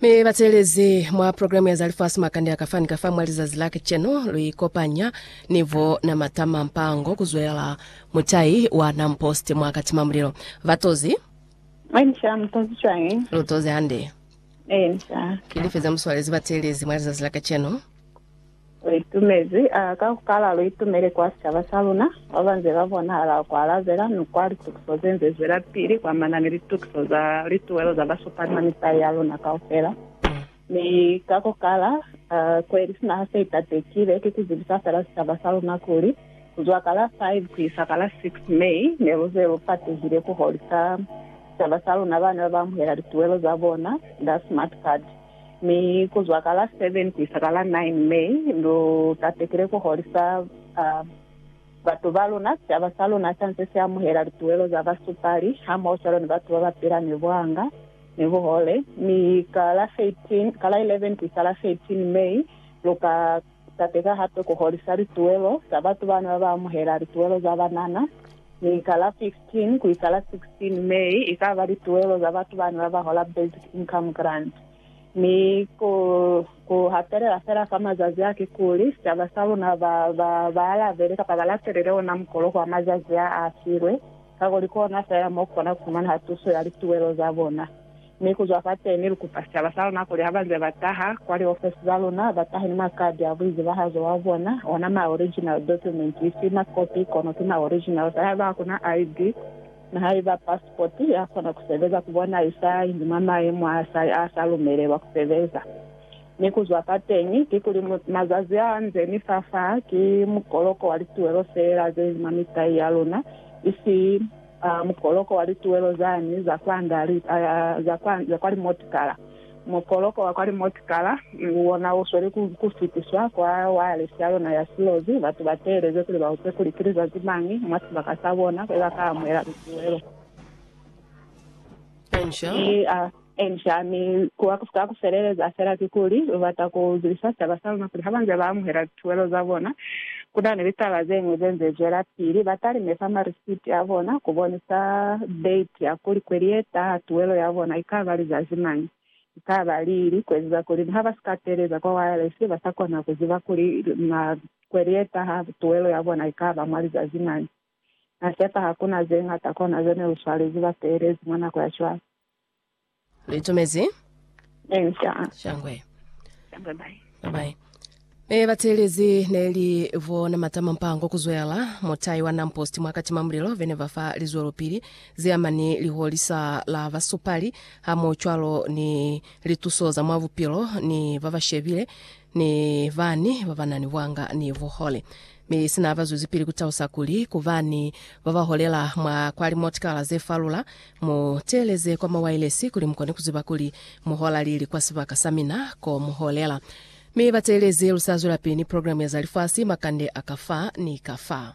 Mi bateelezi mwa programu ya za lifasi makande a kafani kafa mwa lizazi la kacenu lu ikopanya ni bo Namatama Mpango kuzwela mutai wa Nampost mwa Katima Mulilo. Batozi, Mwenja mutozi cwañi? lu tozi hande. Enja. Ki life ze mu swalezi bateelezi mwa lizazi la kacenu? Lu itumezi, a ka ku kala lu itumele kwa sicaba sa luna, ba ba nze ba bonahala ku alabela ni kwa litukiso ze nze zwelapili ku amana ni litukiso za lituwelo za basupali ba misai ya luna kaufela. Mi ka ku kala, a kweli sina ha se itatekile, ki ku zibisa fela sicaba sa luna kuli, ku zwa ka la 5 ku isa ka la 6 May, ne lu ze lu patehile ku holisa sicaba sa luna bane ba ba amuhela lituwelo za bona nda smart card. Mi ku zwa ka la 7 ku isa ka la 9 May, lu tatekile ku holisa batu ba luna. Sicaba sa luna sa nze si amuhela lituwelo za basupali hamoho cwalo ni batu ba ba pila ni buhanga ni buhole. Mi ka la 11 ku isa la 13 May, lu ka. Tateka hape ku holisa lituwelo za batu bana ba ba amuhela lituwelo za banana. Mi ka la 15 ku isa la 16 May i ka ba lituwelo za batu bana ba ba hola Basic Income Grant. Mi ku, ku hapelela fela fa mazazi a kikuli sicaba sa luna ba, ba, ba alabele kapa ba latelele ona mukolo kwa mazazi a a filwe, kakuli kona fela mo ku kona ku fumana tuso ya lituwelo za bona. Mi kuzwa fateni lukupa sicaba saluna kuli habanze bataha kwa liofesi zaluna, batahe ni makadi a buizibahazo wa bona, ona ma original document, isi ma kopi kono ki ma original sa haiba hakuna ID ni haiba passport ya kona kusebeza kubona isa inzi mwa maemo a sa a sa lumelelwa kusebeza. Mi kuzwa fateni kikuli mazazi a nze ni fa fa ki mukoloko wa lituwelo feela zeinzi mwa mitai yaluna, isi A mukoloko wa lituwelo zani za kwanda li, a, za kwa, za kwa limotikala. Mukoloko wa kwa limotikala, u ona u sweli ku, ku fitiswa kwa wayalesi ya yona ya silozi, batu ba teeleze kuli ba upe kuli ki lizazi mañi mwa sibaka sa bona kwe ba ka amuhela lituwelo. Pancha. Ki, a. Inca, mi kuba ku si ka ku feleleza fela kikuli lu bata ku zibisa sicaba sa luna kuli ha ba nze ba amuhela lituwelo za bona, ku na ni litaba ze ñwi ze nze zwelapili. Ba talimefa marisiti a bona ku bonisa date ya kuli kweli ye taha tuwelo ya bona i ka ba lizazi mañi, i ka ba lili, ku ezeza kuli ni ha ba si ka teeleza kwa wayalesi ba sa kona ku ziba kuli na kweli ye taha tuwelo ya bona i ka ba mwa lizazi mañi. Na sepa ha ku na ze ñata kwa na ze ne lu swalezi bateelezi mwa nako ya cwale. Litumezi. Ee, sha. Shangwe. Shangwe bai. Bye-bye. E bateelezi neli vo namata mampango kuzwela mutai wa namposti mwa katima mulilo vene va fa lizwelopili ze amani liholisa la basupali hamo cwalo ni lituso za mwa bupilo ni ba ba shebile ni bani ba ba nani bwanga ni buhole Mi sina haba zwezipili ku talusa kuli, Ku ba ni ba ba holela mwa kwa limotikala ze falula, mu teeleze kwa mawailesi kuli mu kone ku ziba kuli mu hola lili kwa sibaka sa mina ko mu holela. Mi ba teelezi lu sa zwelapili ni programu ya za lifasi, makande a ka fa ni ka fa.